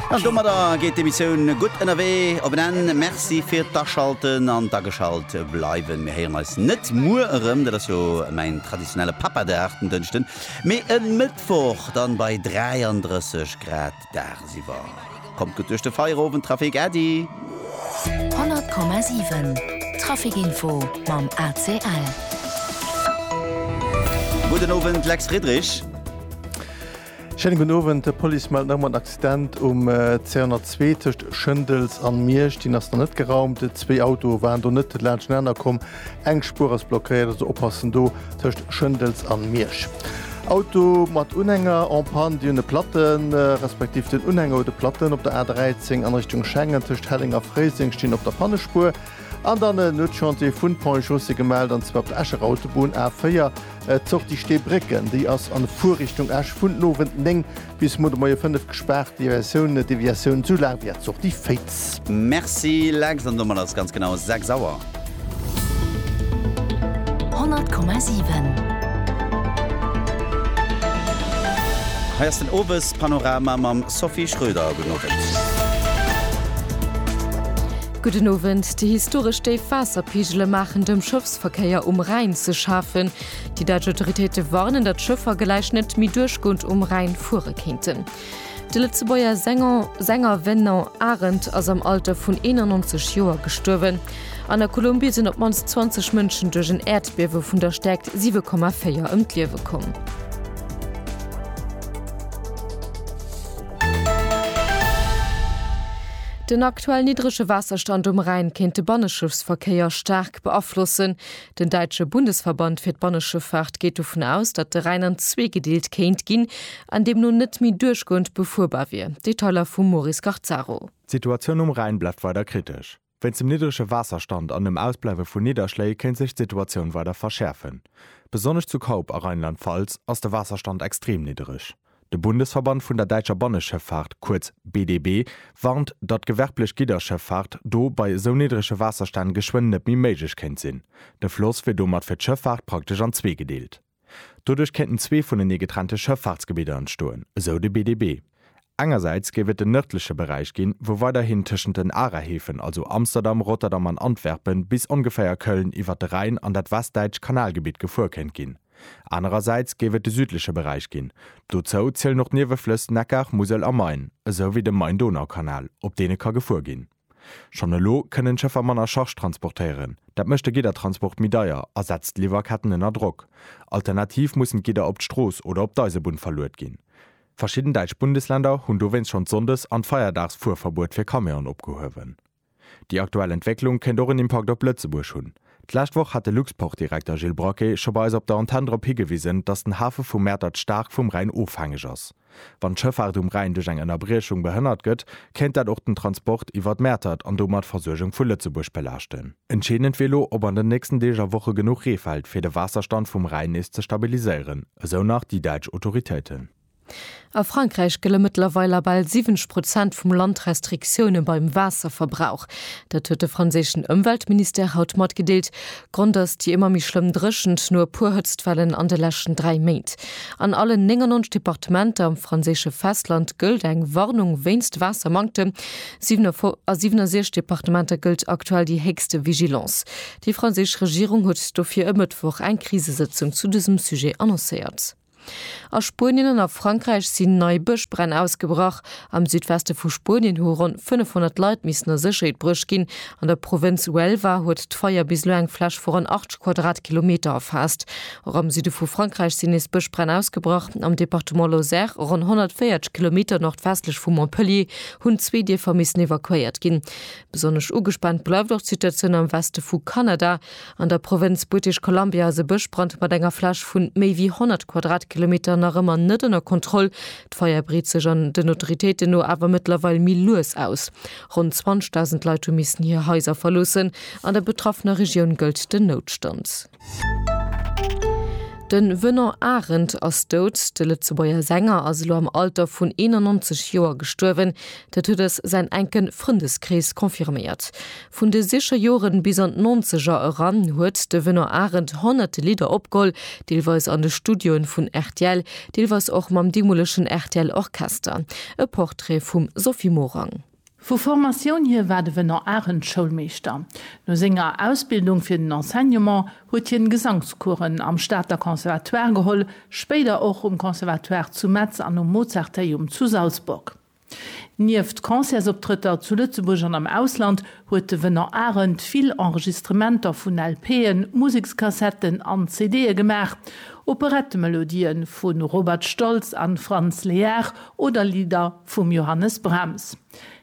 An domadder geet d'Emissioun gutt ënnerwee op en Enn. Merci fir d'Aschalten an d'ageschalt bleiwen. Mir héieren eis net muer erëm, dat ass jo mäin traditionelle Papadag den Dënschden, mee e Mëttwoch dann bei 33 Grad dagsiwwer. Kommt gutt duerch de Feierowend, Trafic, Äddi! 100,7 Traficinfo mam ACL. Gudden Owend, Lex Friedrich. Schéinen gudden Owend, d'Police mellt nach ëmmer en Accident um 202 tëscht Schëndels an Miersch. Deen ass nach net geraumt. Zwee Autoe waren do net laanschtenaner komm. Eng Spuer ass blockéiert, also oppassen do tëscht Schëndels an Miersch. Auto mat Unhänger en Panne, déi hunn e Platten, respektiv den Unhänger huet e Platten. Op der A 13 an Richtung Schengen tëscht Helleng a Fréiseng stinn op der Pannespuer an dann en Nuetschantier vun Pont-et-Chaussée gemellt an zwar op der Escher Autobunn A 4. D'Sortie Steebrécken, déi ass an Fuerrichtung Esch vun den Owend 9 bis muer de Moie 5 gespaart. Deviatioun, Deviatioun sou laang wéi d'Sortie Féitz. Merci Lex, an domat ass ganz genau 6 Auer. 100,7. Hei ass den Owespanorama mam Sophie Schröder. Gudden Owend. Gudden Owend, Déi historesch déif Waasserpegele maachen dem Schëffsverkéier um Rhäin ze schafen. Déi däitsch Autoritéite warnen, datt Schëffer gläich net méi duerchgoend um Rhäin fuere kéinten. De Lëtzebuerger Sänger Venant Arendt ass am Alter vun 91 Joer gestuerwen. An der Kolumbie sinn op d'mannst 20 Mënschen duerch en Äerdbiewe vun der Stäerkt 7,4 ëm d'Liewe komm. Den aktuell niddrege Waasserstand um Rhäin kéint de Banneschëffsverkéier staark beaflossen. Den däitsche Bundesverband fir d'Banneschëffaart geet dovun aus, datt de Rhäin an zwee gedeelt kéint ginn an deemno net méi duerchgoend befuerbar wier. Detailer vum Moris Garzaro. D'Situatioun um Rhäin bleift weider kritesch. Wéinst dem niddrege Waasserstand an dem Ausbleiwe vu Nidderschléi kéint sech d'Situatioun weider verschäerfen. Besonnesch zu Kaup a Rheinland-Pfalz ass de Waasserstand extrem niddereg. De Bundesverband vun der däitscher Banneschëffahrt, kuerz BDB, warnt, datt gewerblech Gidderschëffahrt do bei esou niddrege Waasserstänn geschwënn net méi méiglech kéint sinn. De Floss wier domat fir d'Schëffahrt praktesch an zwee gedeelt. Doduerch kéinten zwee vunenee getrennte Schëffaartsgebidder entstoen, esou de BDB. Engersäits géif et den nërdleche Beräich ginn, wou weiderhin tëschent den Arahäfen, also Amsterdam, Rotterdam an Antwerpen, bis ongeféier Köln iwwert de Rhäin an dat westdäitscht Kanalgebitt gefuer kéint ginn. Anerersäits géif et de südleche Beräich ginn. Dozou zielen och d'Nieweflëss Neckar, Musel a Main, esou wéi de Main-Donau-Kanal, op deene ka gefuer ginn. Schonn elo kënnen d'Schëffer manner Charge transportéieren. Dat mécht de Giddertransport méi deier a setzt d'Liwwerketten ënner Drock. Alternativ mussen d'Gidder op d'Strooss oder op d'Eisebunn verluet ginn. Verschidden däitsch Bundesländer hunn dowéinst schonn d'Sonndes an d'Feierdaagsfuerverbuet fir Camion opgehuewen. Déi aktuell Entwécklung kéint och en Impakt op Lëtzebuerg hunn. D'lescht Woch hat de Luxportdirekter Gilles Braquet scho bei eis op der Antenn drop higewisen, datt den Hafe vu Mäertert staark vum Rhäin ofhängeg ass. Wann d'Schëffaart um Rhäin duerch eng Ënnerbriechung behënnert gëtt, kéint dat och den Transport iwwert Mäertert an domat d'Versuergung vu Lëtzebuerg belaaschten. Entscheedend wier elo, ob an den nächsten Deeg a Woche genuch Ree fält, fir de Waasserstand vum Rhäin nees ze stabiliséieren, esou nach déi däitsch Autoritéiten. A Frankräich gëlle mëttlerweil a bal 70 Prozent vum Land Restriktioune beim Waasserverbrauch. Dat huet de franséischen Ëmweltministère haut matgedeelt. Grond ass déi ëmmer méi schlëmm Dréchent no e puer Hëtztwellen an de leschten dräi Méint. An allen 99 Departementer am franséische Festland gëllt eng Warnung wéinst Waassermanktem. A 67 Departementer gëllt aktuell déi héchste Vigilance. Déi franséisch Regierung huet dofir e Mëttwoch eng Krisesëtzung zu dësem Sujet annoncéiert. A Spuenien an a Frankräich sinn nei Bëschbränn ausgebrach. Am Südweste vu Spuenien hu ronn 500 Leit missen a Sécherheet bruecht ginn. An der Provënz Huelva huet d'Feier bis elo eng Fläch vu ronn 80 Quadratkilometer erfaasst. Och am Süde vu Frankräich sinn nees Bëschbränn ausgebrach. Am Departement Lozère, ronn 140 Kilometer nordwestlech vu Montpellier, hunn zwee Dierfer missen evakuéiert ginn. Besonnesch ugespaant bleift och d'Situatioun am Weste vu Kanada. An der Provënz British Columbia ass e Bëschbrand mat enger Fläch vu méi wéi 100 Quadratkilometer nach ëmmer net ënner Kontroll. D'Feier breet sech an den Autoritéiten no awer mëttlerweil méi lues aus. Ronn 20.000 Leit hu missen hir Haiser verloossen. An der betraffener Regioun gëllt den Noutstand. Den Venant Arendt ass dout. De Lëtzebuerger Sänger ass elo am Alter vun 91 Joer gestuerwen. Dat huet eis säin enken Frëndeskrees confirméiert. Vun de siche Joren bis an d'Nonzeger eran huet de Venant Arendt honnerte Lidder opgeholl, deelweis an de Studioen vun rtl, deelweis och mam deemolechen rtl Orchester. E Portrait vum Sophie Morang. Vu Formatioun hir war de Venant Arendt Schoulmeeschter. No senger Ausbildung fir den Enseignement huet hien Gesangscoursen am Stater Conservatoire geholl, spéider och um Conservatoire zu Metz an um Mozarteum zu Salzburg. Nieft Concertsoptrëtter zu Lëtzebuerg an am Ausland huet de Venant Arendt vill Enregistrementer vun LPen, Musekskassetten an CDe gemaach. Operettemelodië vu Robert Stolz a Franz Lehár oder Lidder vum Johannes Brahms.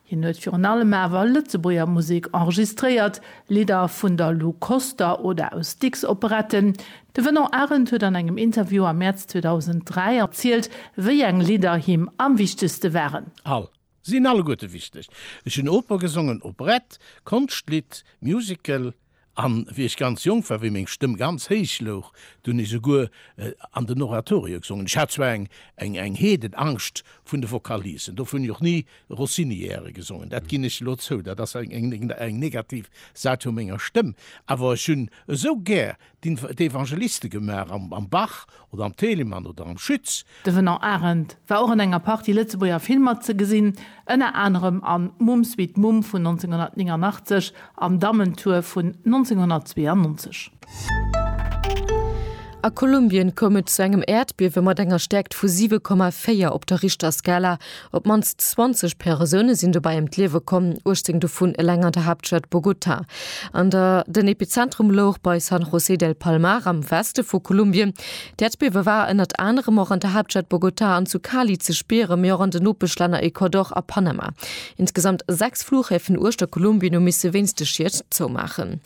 Hien huet virun allem awer Lëtzebuerger Musek enregistréiert, Lidder vun der Lou Koster oder aus Dicks Operetten, De Venant Arendt huet an engem Interview am Mäerz 2003 erzielt, wéi eng Lidder him am wichtegste waren. All sinn alleguerte wichteg. Ech hunn Oper gesongen, Operette, Konschtlidd, Musical, an wéi ech ganz jonk war, wéi meng Stëmm ganz héich louch, do hunn ech souguer an den Oratorio gesongen. Ech hat zwar eng Heedenangscht vun de Vocalisen, dofir hunn ech och ni Rossiniairen gesongen, dat ginn ech elo zou, dat ass eng negativ Säit vu menger Stëmm, awer ech hunn esou gär d'Evangeliste gemaach am Bach oder am Telemann oder am Schütz. De Venant Arendt war och an enger Partie Lëtzebuerger Filmer ze gesinn, ënner anerem an Mumm Sweet Mumm vun 1989 an Dammentour vun 1992. A Kolumbien koum et zu engem Äerdbiewe mat enger Stäerkt vu 7,4 op der Richterskala. Op d'mannst 20 Persoune sinn dobäi ëm d'Liewe komm, 18 dovun eleng an der Haaptstad Bogota. An der Den Epizentrum louch bei San José del Palmar am Weste vu Kolumbien. D'Äerdbiewe war ënnert anerem och an der Haaptstad Bogota an zu Cali ze spieren, mee och an den Nopeschlänner Ecuador a Panama. Insgesamt sechs Flughäfen uechter Kolumbien hu misse wéinst de Schied zoumaachen.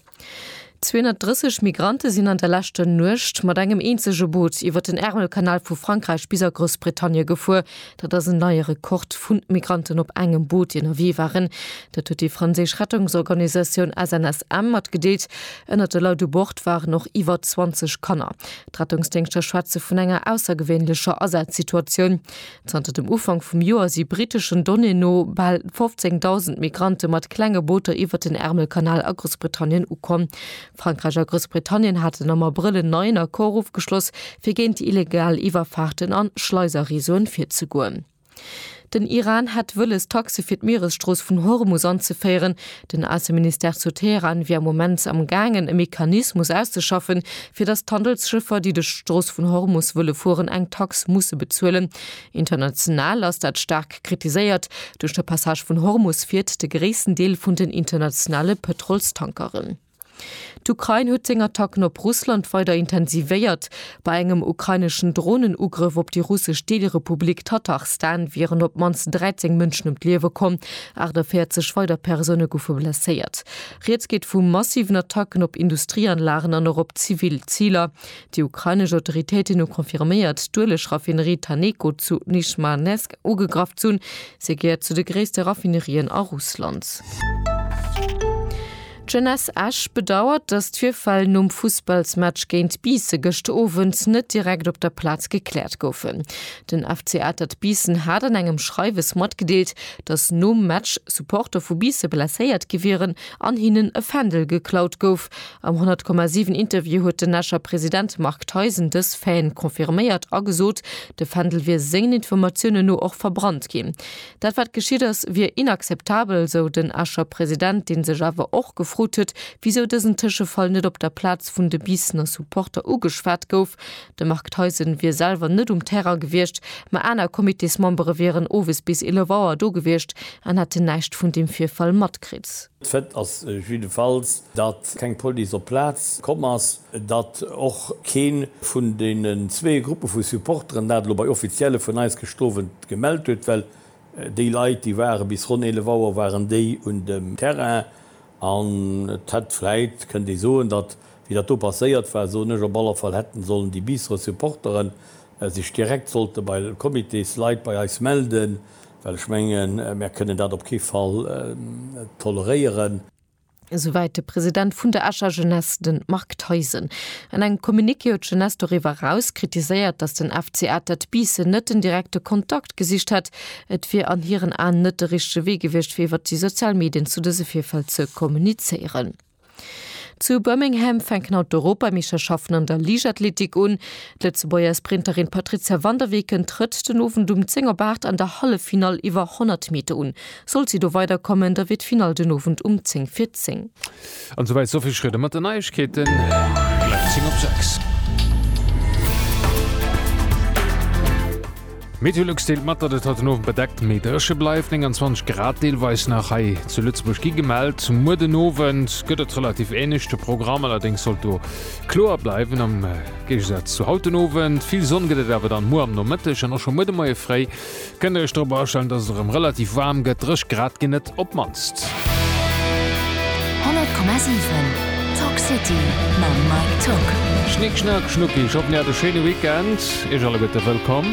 230 Migrante sinn an der leschter Nuecht mat engem eenzege Boot iwwer den Ärmelkanal vu Frankräich bis a Groussbritannie gefuer. Dat ass en neie Rekord vu Migranten op engem Boot, déi ënnerwee waren. Dat huet déi franséisch Rettungsorganisatioun SNSM matgedeelt. Ënnert de Leit u Bord waren och iwwer 20 Kanner. D'Rettungsdéngschter schwätze vun enger aussergewéinlecher Asazsituatioun. Zanter dem Ufank vum Joer si briteschen Donnéeë no bal 15.000 Migrante mat klenge Booter iwwert den Ärmelkanal a Groussbritannien ukomm. Frankräich a Groussbritannien haten am Abrëll en neien Accord ofgeschloss, fir géint illegal Iwwerfaarten an Schleiserreseauen virzegoen. Den Iran hätt wëlles, Taxe fir d'Mieresstrooss vun Hormus anzeféieren, Den Ausseministère zu Teheran wier am Moment am gaangen e Mechanismus auszeschaffen, fir datt d'Handelsschëffer, déi duerch d'Strooss vun Hormus wëlle fueren, eng Tax musse bezuelen. International ass dat staark kritiséiert. Duerch de Passage vun Hormus fiert de gréissten Deel vun den internationale Pëtrolstankeren. D'Ukrain huet seng Attacken op Russland weider intensivéiert. Bei engem ukraineschen Dronenugrëff op déi russesch Deelrepublik Tatarstan wieren op d'mannst 13 Mënschen ëm d'Liewe komm, 48 weider Persoune goufe blesséiert. Rieds geet vu massiven Attacken op Industrieanlagen an och op zivil Ziler. Déi ukrainesch Autoritéiten hu confirméiert, d'Ueleg-Raffinerie Taneko zu Nizhmanesk ugegraff ze hunn. Se gehéiert zu de gréisste Raffinerien a Russland. D'Jeunesse Esch bedauert, datt d'Virfäll nom Fussballsmatch géint Biissen gëscht Owend net direkt op der Plaz gekläert goufen. Den FC Atert Biissen hat an engem Schreiwes matgedeelt, datt nom Match Supporter vu Biisse blesséiert gi wieren an hinnen e Fändel geklaut gouf. Am 100,7 Interview huet den Escher President Marc Theisen dës Faiten confirméiert a gesot, de Fändel wier sengen Informatiounen no och verbrannt ginn. Dat wat geschitt ass, wier inakzeptabel, sou den Escher President, dee sech awer och gefrot huet, wisou dësen Tëschefall net op der Plaz vun de Biissener Supporter ugeschwat gouf. De Marc Theisen wier selwer net um Terrain gewiescht, ma aner Comitésmembere wieren owes bis 11 Auer do gewiescht an hätten näischt vun deem Virfall matkritt. Fait ass jiddefalls, datt keng Police op d'Plaz komm ass, datt och kee vun deenen zwee Gruppe vu Supporteren, dat elo bei Offizielle vun eis gestowent Gemellt huet, well déi Leit, déi ware bis ronn 11 Auer waren déi un dem Terrain an et hätt vläit, kënnt ee soen, datt, wéi dat do passéiert war, soen ech op aller Fall, hätten sollen déi Biisserer Supportere sech direkt sollte bei Comitésleit bei eis melden, well ech mengen, mär kënnen dat op kee Fall toleréieren. Esouwäit de President vun der Escher Jeunesse, de Marc Theisen. An engem Communiqué huet d'Jeunesse doriwwer eraus kritiséiert, datt den FC Atert Biissen net den direkte Kontakt gesicht hätt. Et wier an hiren Aen net de richtege Wee gewiescht, fir iwwert déi sozial Medien zu dëse Virfäll ze kommunizéieren. Zu Birmingham fänken haut d'Europameeschterschaften an der Liichtathletik un. D'Lëtzebuerger Sprinterin d'Patrizia van der Weken trëtt den Owend um 10 op 8 an der Halleffinall iwwer 100 Meter un. Sollt si do weider kommen, da wier d'Finall den Owend um 10 vir 10. An esouwäit d'Sophie Schröder mat den Neiegkeeten. Gläich 10 op 6. D'Meteolux deelt mat, datt et haut den Owend bedeckt méi dréche bleift. 29 Grad deelweis nach hei zu Lëtzebuerg gi gemellt. Muer den Owend gëtt et relativ änlech. De Programm allerdéngs sollt do kloer bleiwen am Géigesaz zu haut den Owend. Vill Sonn gëtt et awer dann muer am Nomëtteg an och scho muer de Moie fréi. Kënnt der iech drop astellen, dass et erëm relativ waarm gëtt? Dréch Grad ginn et op d'mannst. 100,7 Talk City mam Mike Tock. Schnick Schnack Schnucki, ech hoffen dir hat e schéine Weekend. Iech alleguerte wëllkomm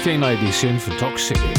fir eng nei Editioun vun Talk City.